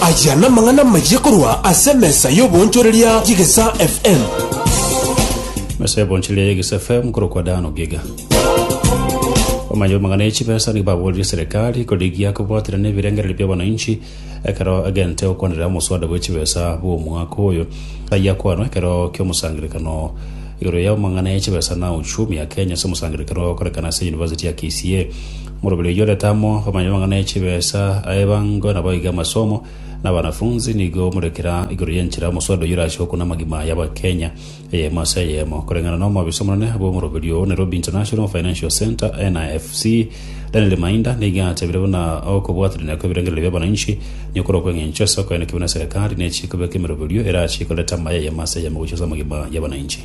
Ayia namang'ana amayia korwa ase emesa y'oboonchoreria y'Egesa FM. mesa y'oboonchoreria y'Egesa FM korokwa Dan Ogiga. Omanya omang'ana ya chibesa nigo baboorire serikali korigia kobwatera nebirengererio bia wananchi ekero egente okwanera omoswada bwe chibesa bw'omwaka oyo. Ayia kwanwa ekero ki'omosangerekano igoro ya omang'ana ya chibesa na uchumi ya Kenya ase omosangerekano okorekana ase University ya KCA. Morobiri oyio orete amo bamanye amang'ana e chibesa a ebango, na baige amasomo, na abanafunzi nigo more kera igoro y'enchera omoswada oyio orache gokuna amagima y'Abakenya eyemo ase eyemo. Koreng'ana na omwabisa omonene bw'omorobiri oo, Nairobi International Financial Centre, NFC, Daniel Mainda nigo atebire buna okobwatanania kw'ebirengererio bi'abananchi nigokorwa okw'eng'encho ase okoenekiwa na serikali ne chikobeka emeroberio erache ikorete amaye eyemo ase eyemo gochia ase amagima y'abananchi.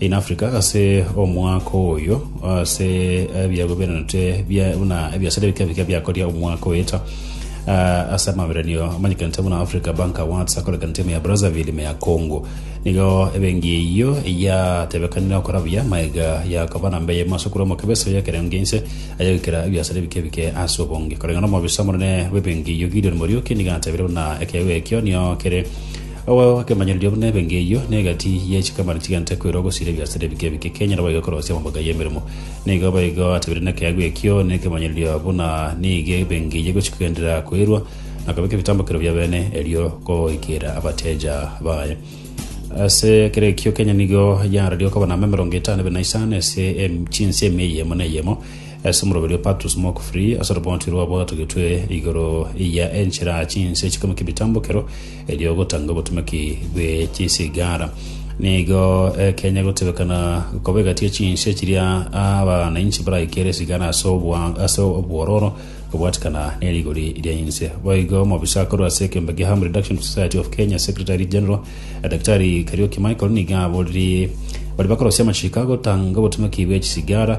In Africa ase omwaka oyo ase ebiabu birenete bia- buna ebiasara ebike bike biakoria omwaka oeta Ah, ase amabererio amanyekanete buna Africa Bank Awards akorekana timu ya Brazzaville me ya Congo nigo ebengi eyio eyatebekanire okora buya maega yakoba namba eyemo ase okura omokebe ase ekerengo giainse ayagoikera ebiasara ebike bike ase obonge koreng'ana omobisa omonene bw'ebengi eyio Gideon Muriuki nigo atebire buna ekeegwa ekio nio kere Ogokemanyereria buna ebe ng'eyio negati ye chikamera chigenta koirwa gosiria ebiasara ebike ebike Kenya nabo iga korosia amaboko ya emeremo. Nigo boigo atebirie nekeegwa ekio nekemanyereria buna nigo ebe ng'eyio egochia kogenderera koirwa na kobeka ebitambokero bia bene erio goikera abateja baye. Ase ekero ekio Kenya nigo yaararia okoba na ama emerongo etano ebe na isano ase chinse emia eyemo na eyemo ase omoroberi o Patrice Mok Free ase orobonto rwabo atogetwe igoro ya enchera chinse chikong'u ki'ebitambokero Erio ogotanga obotumeki bwe chisigara. Nigo ekenya gotebekana koba egati ya chinse chiria abanainchi baraikere esigara ase obwa- ase obwororo kobwatikana nerigori ria inse. Boigo omobisa akorwa ase ekeombe kia Harm Reduction Society of Kenya, Secretary General, Daktari Kariuki Michael nigo aboririe baria bakorosia amachiko agotanga obotumeki bwe chisigara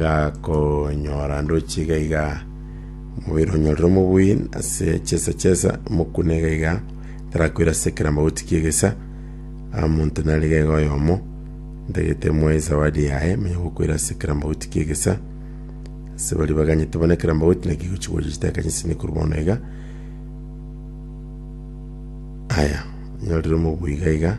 gakonyora ndochi iga iga omobere onyorire omobui ase chesa chesa omokune iga iga tarakoira ase kera magoti kiegesa omonto nare gega oyomo ntagete moe zawadi yaye manya gokoira ase kera magoti kiegesa ase baria baganyete bono ekera magoti naki gochi goria chitaka chisini korwa bono iga aya onyorire omobui iga iga.